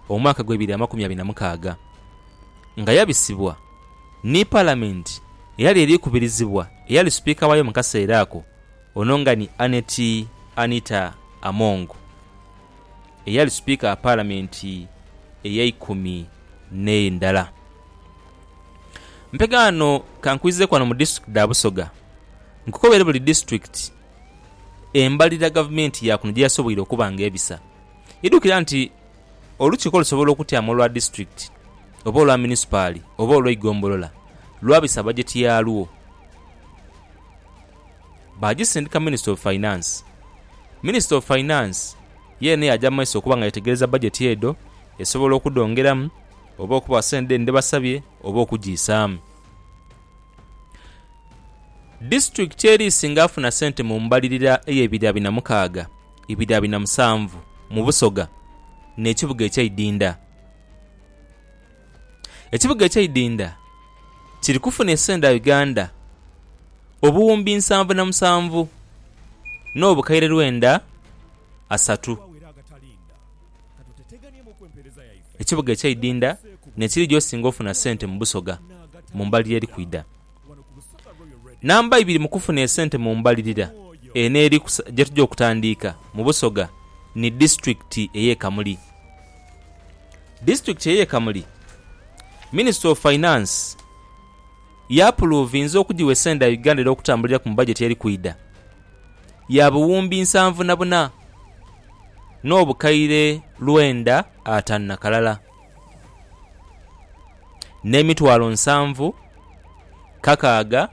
omwaka gw'ebiri amakumi abiri na mukaaga, nga yabisibwa ni Palamenti eyali eri kubirizibwa eyali Sipiika waayo mu kaseera ako, ono nga ni Annet Anita Among, eyali Sipiika wa Palamenti ey'eikumi n'endala. Mpega ghano ka nkwizeeku ghano mu disitulikiti dha Busoga, nkukobere buli disitulikiti embalirira Gavumenti ya kuno gye yasoboire okuba nga ebisa. Idhukira nti Olukiiko lusobola okutyaama olwa disitulikiti oba olwa munisipaali oba olw'eigombolola lwabisa bajeti yaalwo baagisindika Minisita of Finance. Minisita of Finance yeene yaaja mu maiso okuba nga yetegereza bajeti edho esobola okudhongeramu oba okubawa sente dheene dhebasabye oba okugiisaamu. Disitulikiti eri isinga afuna sente mu mbalirira ey'ebira binamukaaga. ibidhabi na musanvu mu busoga n'ekibuga ekyeidinda. Ekibuga ekyeidinda kiri kufuna esenda Uganda obuwumbi nsanvu na musanvu n'obukaire lwenda asatu. Ekibuga ekyeidinda n'ekiri gyosinga ofuna sente mu busoga mu mbali yeri kwidha. Namba ibiri mu kufuna esente mu mbalirira eno eri ku gyetuja okutandiika mu Busoga ni disitulikiti eye Kamuli. Disitulikiti eye Kamuli minisita of finance yapuluvinze okujiwa esente dha Uganda era okutambuliraku mu bajeti eri kwidha ya buwumbi nsanvu na buna n'obukaire lwenda atanu na kalala. n'emitwalo nsanvu kakaaga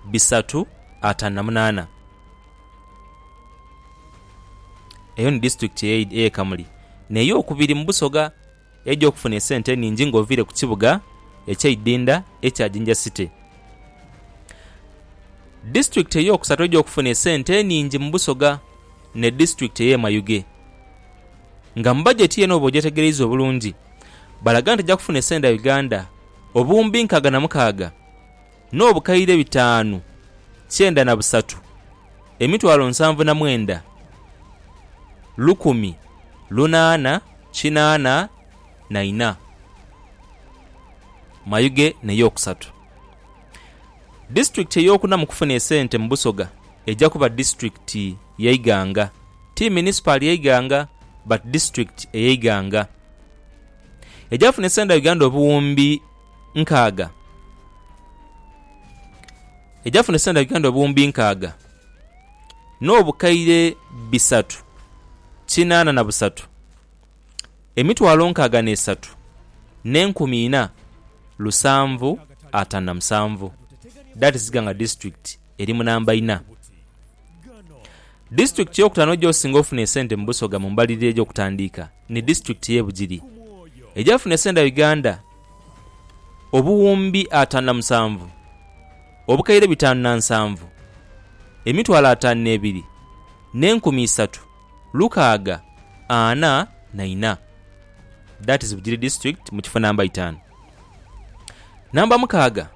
bisatu ataanu na munaana. Eyo ni disitulikiti ey'e Kamuli n'eyokubiri mu Busoga eidha okufuna esente eningi ng'oviire ku kibuga eky'eidinda ekya Jinja City. Disitulikiti ey'okusatu eidha okufuna esente eningi mu Busoga ni disitulikiti ey'e Mayuge. nga mu bajeti ye n'oba ogyetegereiza obulungi balaga nti ejja kufuna esente dha Uganda obuwumbi nkaaga na mukaaga n'obukaire bitaanu kyenda na busatu, emitwalo nsanvu na mwenda, lukumi lunaana kinaana na ina. Mayuge n'eyookusatu. Disitulikiti eyookuna mu kufuna esente mu Busoga eja kuba disitulikiti ye Iganga, ti Munisipaali ye Iganga but District eye Iganga egyafuna esenda Uganda obuwumbi nkaaga egyafuna esenda Uganda obuwumbi nkaaga n'obukaire bisatu kinaana na busatu, emitwalo nkaaga n'esatu n'enkumi ina lusanvu atano na musanvu, that is Iganga District eri mu namba ina. Disitulikiti ey'okutaano egy'osinga ofuna esente mu Busoga mu mbalirira egy'okutandiika ni disitulikiti y'e Bugiri egyafuna esente dha Uganda obuwumbi ataanu na musanvu, obukaire bitaanu na nsanvu, emitwalo ataanu n'ebiri, n'enkumi isatu, lukaaga, ana na ina. That is Bugiri District mu kifo namba itaanu. Namba mukaaga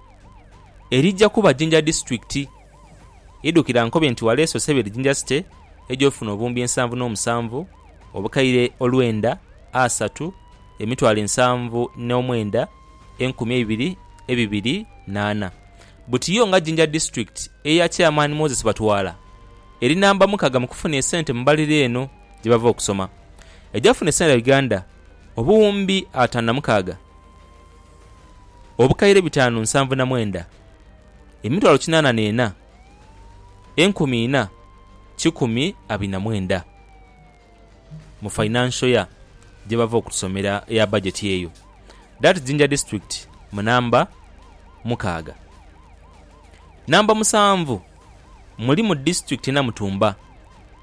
erija kuba Jinja Disitulikiti. Idhukira nkobe nti waleese Osebedi Jinja City egy'ofuna obuwumbi ensanvu n'omusanvu, obukaire olwenda, asatu, emitwalo ensanvu n'omwenda, enkumi eibiri, ebibiri n'ana. Buti yo nga Jinja District eya Chairman Moses Batwala eri namba mukaga mu kufuna esente mu mbalirira eno gyebava okusoma. Egyafuna esente Uganda obuwumbi ataano na mukaaga. obukaire bitaanu nsanvu na mwenda, emitwalo kinaana n'ena, enkumi ina, kikumi abiri na mwenda, mu financial year gyebava okutusomera eya budget eyo. That Jinja district mu namba mukaaga. Namba musanvu mulimu district e Namutumba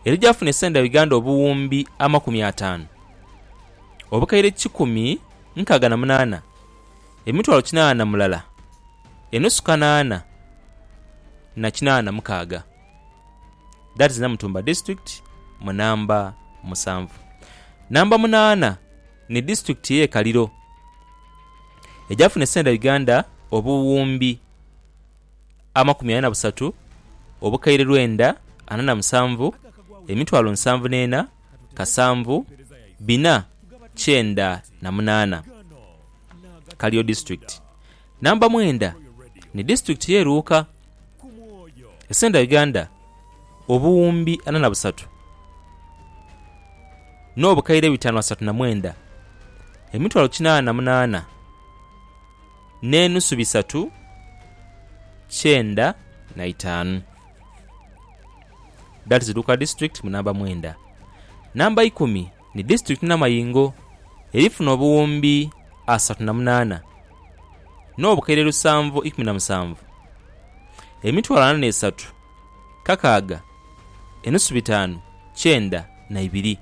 era egyafuna esente dha Uganda obuwumbi amakumi ataanu, obukaire kikumi nkaaga na munaana, emitwalo kinaana na mulala, enusu kanaana na kinaana na mukaaga, that is Namutumba District mu namba musanvu. Namba munaana ni District eye Kaliro egyafuna esente dha Uganda obuwumbi amakumi ana na busatu, obukaire lwenda ana na musanvu, emitwalo nsanvu n'ena. kasanvu bina kyenda na munaana, Kalio District, namba mwenda ni District ye Luuka. Esente dha Uganda obuwumbi ana na busatu no bukaire bitanu asatu na mwenda, emitwalo kinana na munaana ne nusu bisatu kyenda na itaanu. That is Luka District mu namba mwenda. Namba ikumi ni District Namayingo erifuna obuwumbi asatu na munaana n'obukaire lusanvu ikumi na musanvu, emitwalo ana n'esatu, kakaaga, enusu bitaanu, kyenda na ibiri.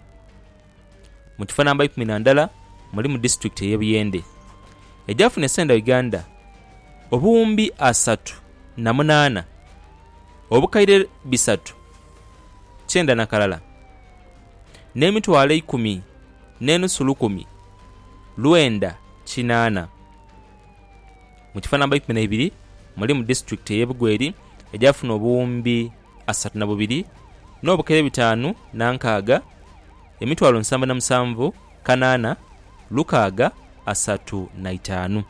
Mu kifo namba ikumi na ndala mulimu disitulikiti ey'e Buyende egyafuna esente dha Uganda obuwumbi asatu na munaana obukaire bisatu kyenda na kalala n'emitwalo eikumi n'enusu lukumi lwenda kinaana. Mu kifo namba ikumi na ibiri mulimu disitulikiti ey'e Bugweri egyafuna obuwumbi. asatu na bubiri n'obukere bitaanu na nkaaga, emitwalo nsanvu na musanvu kanaana lukaaga asatu na itaanu.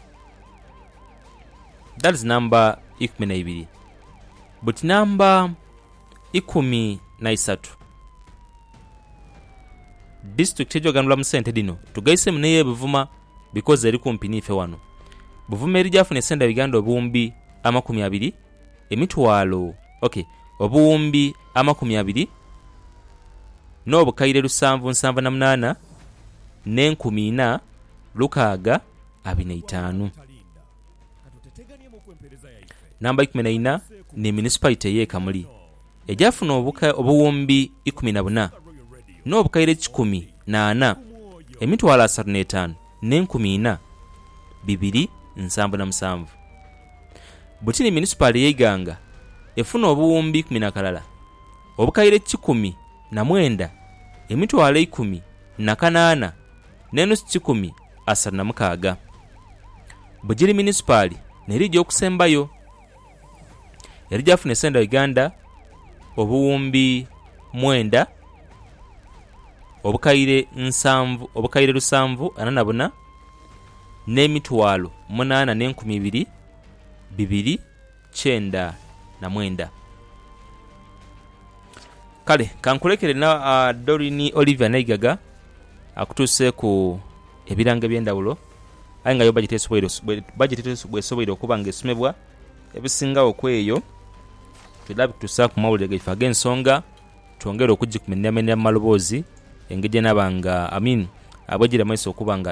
That is number ikumi na ibiri. But number ikumi na isatu, disitulikiti ejoganirwa mu sente dhino tugaisemu n'eye Buvuma because eri kumpi n'ife wano. Buvuma eri gyafuna esente dha Uganda obuwumbi amakumi abiri emitwalo, ok, obuwumbi amakumi abiri n'obukaire lusanvu nsanvu na munaana n'enkumi ina lukaaga abiri na itaanu. Namba ikumi na ina ni Municipality ey'e Kamuli egyafuna obuka obuwumbi ikumi na buna n'obukaire kikumi na ana, emitwalo asatu n'etaanu. n'enkumi ina, bibiri, nsanvu na musanvu. Butini Munisipaali ye Iganga efuna obuwumbi ikumi na kalala, obukaire kikumi na mwenda, emitwalo eikumi na kanaana n'enusu kikumi asatu na mukaaga. Bugiri Munisipaali n'erija okusembayo. Yali gyafuna esente dha Uganda obuwumbi mwenda, obukaire nsanvu, obukaire lusanvu ana na buna, n'emitwalo munaana n'enkumi ibiri, bibiri, kyenda na mwenda. Kale ka nkulekere na Doreen Olivia Naigaga akutuuseeku ebirango eby'endhawulo. aye nga yo bajeti bw'esoboire okuba nga esomebwa ebisingagho ku eyo twidha bituusaaku mu mawulire gaife ag'ensonga twongere okugimenyaku maloboozi engeri gyenaba nga, I mean, bwegiri mu maiso okuba nga